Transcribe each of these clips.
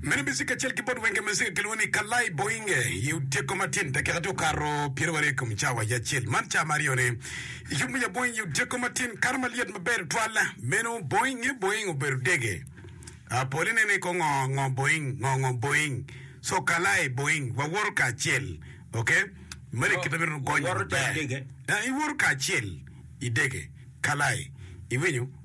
Meno miziki kacel ki bot wenge muzika kilwongo ni Kalay Boinge i otyeko matin, dakika tye okato pyerabiryo i kom cawa ya acel. Man cawa ma aryone i yub me yaboing i otyeko matin, kato ma lyet maber tutwal. Meno boinge boing obedo dege. Ah, pol ineno i ko ngo ngo boing, ngo ngo boing. So kalay boing, wawoto kacel. Ok? Meno i kite meno gonyo Wawoto dege. maber. Ah, iwoto kacel i dege. Kalay. Iwinyo?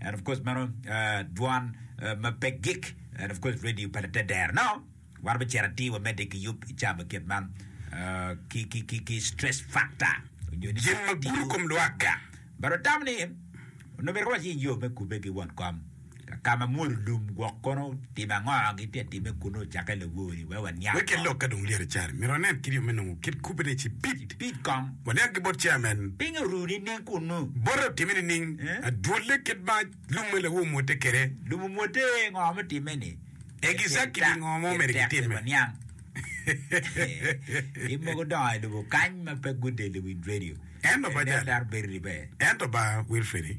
And of course meno dwan ma pe gik and of course radio pa te dero no wan be cera ti wa mede ki yub ca me ket man ki ki ki ki stress factor onyo ni Jin ma gudo kom lwak gang. But otamo ni onongo bedo waci yo me kube ki won kom ka ma mwolo lum gwok kono Tim ango gitye timme kun ocakke lawori? Wek waniang kong. Wek ilok ka dong lyet acel, myero wanen kit yo me nongo kit kubbe ni cipid. Cipid kong. Waniang ki bot chairman. Pingo oru nining kunnu? Bote otimme nining? Adwolle kit ma lum me lawu omwotte kwede. Lum omwotte ngo me timme ni? Exactly Tek ngo ma omyero tek gitimme? waniang. Tim mogo dongo i lobo kany ma pe gudel i Wind Radio. Ento Bajali. Nen dar Berry Ribe. Ento ba Wilfredi.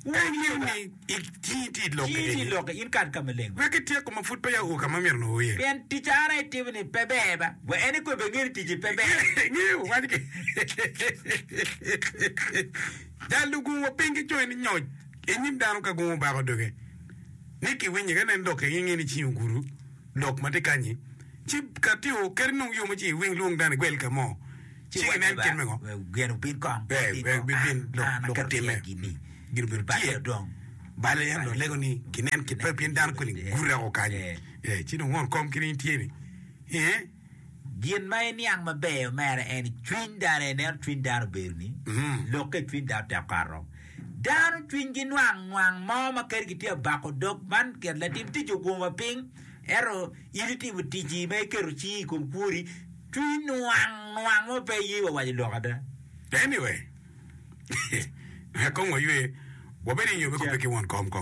Wek iyub ni cingi tye i lokke eni. Lokke in kat ka maleng. Wek ityeko ma pud peya oo ka ma imito nongo iye. Pien tic Ara itimo-ni pe ber ba. Wa en ikobbe nge ni ticci pe ber. Ngeyo wac ki jal lugungo piny ki coyo ni nyoc i nyim dano ka gungo bako doge ni ki winye ka nen lokke inge ni cingi ogudo lok ma tye kanyi ci ka tye oo keri nongo yo ma ci iwing lwong dano igwel ka mo. ci iwac ni ba gin obin kong, wek bibin lok ka timme, gin obedo tye bale. En dong lego ni ginen kibbe, pien dano koni gure woko kany, ci dong won kom kene in tye ni ee. Gin ma iniang maber mere en ni cwiny dano, ineno cwiny dano obedo ni lok ka icwiny dano tek okato. Dano cwinygi nwang nwang mo ma kadi gitye ka bako dog, man ket latim tic ogumo wa piny, ento in itimo ticci ma iketo cingi i kom kwori. Cwiny nwang nwang mo pe ye wa waco lok ada. Anyway, me kong waywe, wabed i nyobe kobbe ki won kom kong.